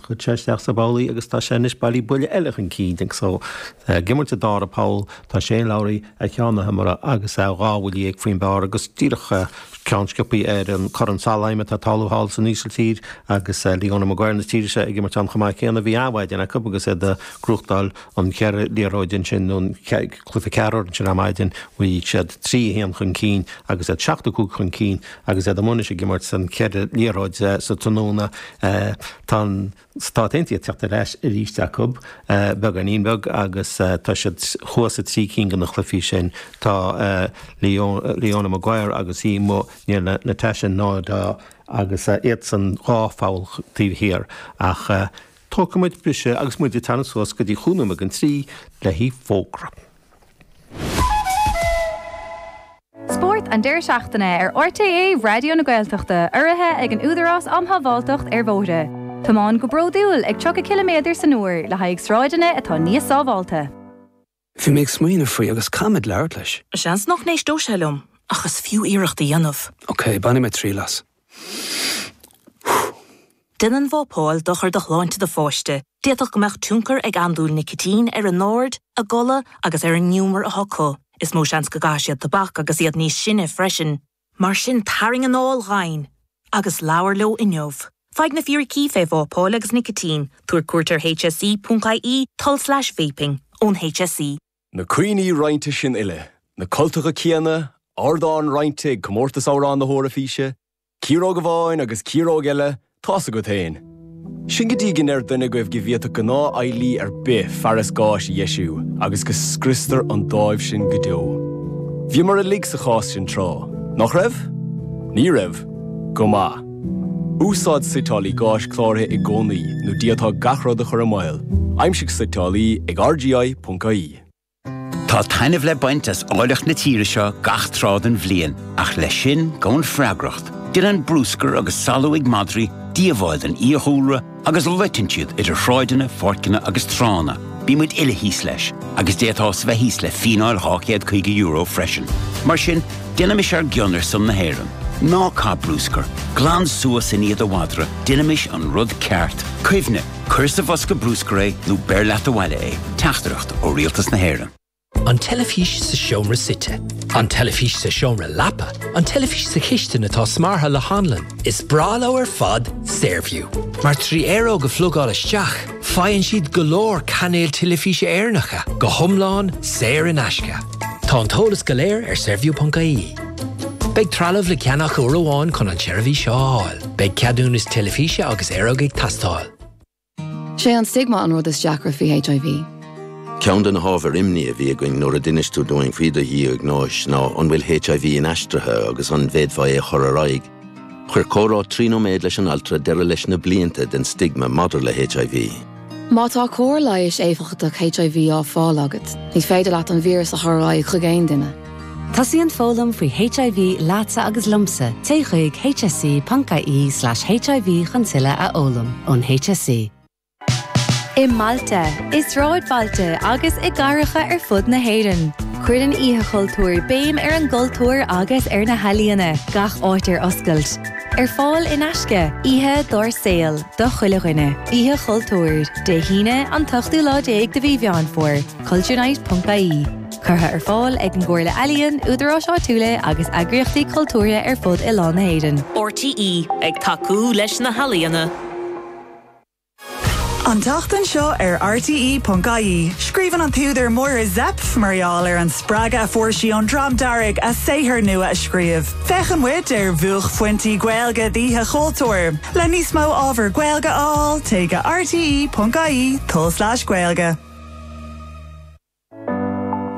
Chuir sé isteach sa bpoll é agus tá sé anois bailithe buille eile chun cinn agus é ag imirt an dara poll, tá Shane Lowry ar cheann na hiomaire agus é dhá bhuille dhéag faoin bpar agus díreach ceann sciopthaí ar an gCorn Solheim atá ag tarlú thall san Ísiltír agus Leona Maguire na tíre seo ag imirt ann chomh maith céanna. Bhí an-mhaidin acu agus iad a' gnóthachtáil an cheithre liathróid ansin, nó an cluiche ceathrar ansin ar maidin, bhí siad trí, a haon chun cinn agus iad seacht a cúig chun cinn. Agus iad amuigh anois ag imirt sa cheithre liathróid sa tráthnóna, tá na Stáit Aontaithe ag teacht ar ais arís acu, beagáinín beag, agus tá siad thuas i dtrí cinn de na cluichí sin. Tá Leona Maguire agus í amuigh in éindí le Nastasia Nadaud agus iadsan dhá pholl taobh thiar, ach tógfaidh muid briseadh agus muid ag teannadh suas go dtí chúig nóiméad don trí le haghaidh fógraí. Spórt an deireadh seachtaine ar RTÉ Raidió na Gaeltachta urraithe ag an Údarás um Shábháilteacht ar Bhóithre. Tiomáin go bródúil ag 30 ciliméadar san uair le haghaidh sráideanna atá níos sábháilte. Bhí mé ag smaoineamh faoi agus caithfidh mé labhairt leis. Seans nach n-éisteodh sé liom, ach is fiú iarracht a dhéanamh. Ok, bainfidh mé triail as. Déanann vapáil dochar do shláinte do pháiste, d'fhéadfadh go mbeadh tionchar ag andúil nicitín ar a n-aird, a gcodladh agus ar an ngiúmar atá acu. Is mó seans go gcaithfidh siad tobac agus iad níos sine freisin. Mar sin tarraing anáil dhomhain agus labhair leo inniu. Faigh na fíricí faoi vapáil agus nicitín, tabhair cuairt ar hse.ie, tulslais vaping, ón hse. Na cuimhní roinnte sin uile, na cultacha céanna, ardán roinnte ag Comórtas Amhrán na hEoraifíse, ciaróg amháin agus ciaróg eile, tá's agat féin. Sin go dtí go ndeir duine agaibh go bhféadfadh gnáthfheighlí ar bith fearas gáis a dheisiú agus go scriostar an dáimh sin go deo. Bhíomar uilig sa chás sin tráth, nach raibh? Ní raibh? Go maith. Úsáid suiteálaí gáis cláraithe i gcónaí nó d'fhéadfá gach rud a chur i mbaol. Aimsigh suiteálaí ag RGI.ie. Tá taitneamh le baint as áilleacht na tíre seo gach tráth den bhliain, ach leis sin gabhann freagracht. Déanann brúscar agus salú ag madraí díobháil don fhiadhúlra, Agus loiteann siad idir shráideanna, pháirceanna agus tránna. Bíonn muid uile thíos leis, agus d'fhéadfá bheith thíos le fíneáil €250 freisin. Mar sin, déanaimis ár gcion ar son na hÉireann. Ná caith brúscar, glan suas i ndiaidh do mhadra, déanaimis an rud ceart. Cuimhnigh, cuir sa bhosca brúscair é nó beir leat abhaile é. Teachtaireacht ó Rialtas na hÉireann. An teilifís sa seomra suite. An teilifís sa seomra leapa. An teilifís sa chistin atá smeartha le hanlann. Is breá leo ar fad Saorview, mar trí aeróg a phlugáil isteach, faigheann siad go leor cainéil teilifíse Éireannacha, go hiomlán saor in aisce. Tá an t-eolas go léir ar Saorview.ie. Beidh trealamh le ceannach uair amháin chun an tseirbhís seo a fháil. Beidh ceadúnas teilifíse agus aeróg ag teastáil. Sé an stigma an rud is deacra faoi HIV. Ceann de na hábhair imní a bhí againn nuair a d'inis tú dúinn faoi do dhiagnóis ná an bhfuil HIV inaistrithe agus an bhféadfá é a chur ar aghaidh. Chuir comhrá trí nóiméad leis an altra deireadh leis na blianta den stigma maidir le HIV. Má tá cóir leighis éifeachtach HIV á fáil agat, ní féidir leat an víreas a chur ar aghaidh chuig aon duine. Tosaíonn foghlaim faoi HIV leatsa agus liomsa, téigh chuig hse.ie/hiv chun tuilleadh a fhoghlaim ón HSE. I mbailte, i sráidbhailte agus i gcathracha ar fud na hÉireann, cuireann Oíche Chultúir béim ar an gcultúr agus ar na healaíona, gach áit ar oscailt. Ar fáil in aisce, oíche dár saol do chuile dhuine. Oíche Chultúir, Dé hAoine, an t-ochtú lá déag de mhí Mheán Fómhair, cultureNight.ie. curtha ar fáil ag an gComhairle Ealaíon, Údaráis Áitiúla agus Eagraíochtaí Cultúrtha ar fud oileán na hÉireann. RTÉ ag tacú leis na healaíona. An tseachtain seo ar RTÉ.ie, scríobhann an t-údar Máire Zepf mar gheall ar an spreagadh a fuair sí ón Dream Dearg a saothar nua a scríobh. Féachann muid ar bhuaicphointí Gaeilge d'Oíche Chultúir. Le níos mó ábhar Gaeilge a fháil, téigh go rte.ie/gaeilge.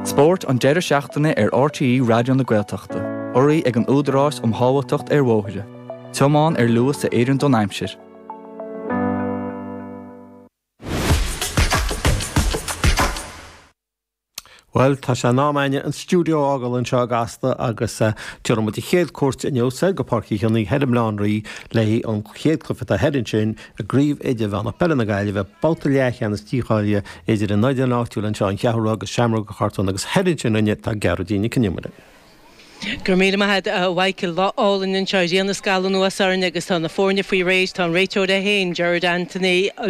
Spórt an deireadh seachtaine ar RTÉ Raidió na Gaeltachta, urraithe ag an Údarás um Shábháilteacht ar Bhóithre, tiomáin ar luas a oireann don aimsir. Bhuel, tá sé in am againne an stiúideo a fhágáil anseo i gCasla agus déanfaidh muid an chéad chuairt inniu soir go Páirc Uí Chionnaith thoir i mBaile Átha an Rí le haghaidh an chéad chluiche atá thoir ansin, I gCraobh Idirmheánach Peile na Gaillimhe, babhta leathcheannais dícháilithe idir an fhoireann áitiúil anseo, An Cheathrú Rua, agus Seamróga Chortúin agus thoir ansin dúinne, tá Gearóidín Nic an Iomaire. Go raibh míle maith agat, a Mhichael. Lá álainn anseo. Grian ag scalladh anuas orainn agus tá na foirne faoi réir. Tá an réiteoir é féin, Gerard Anthony.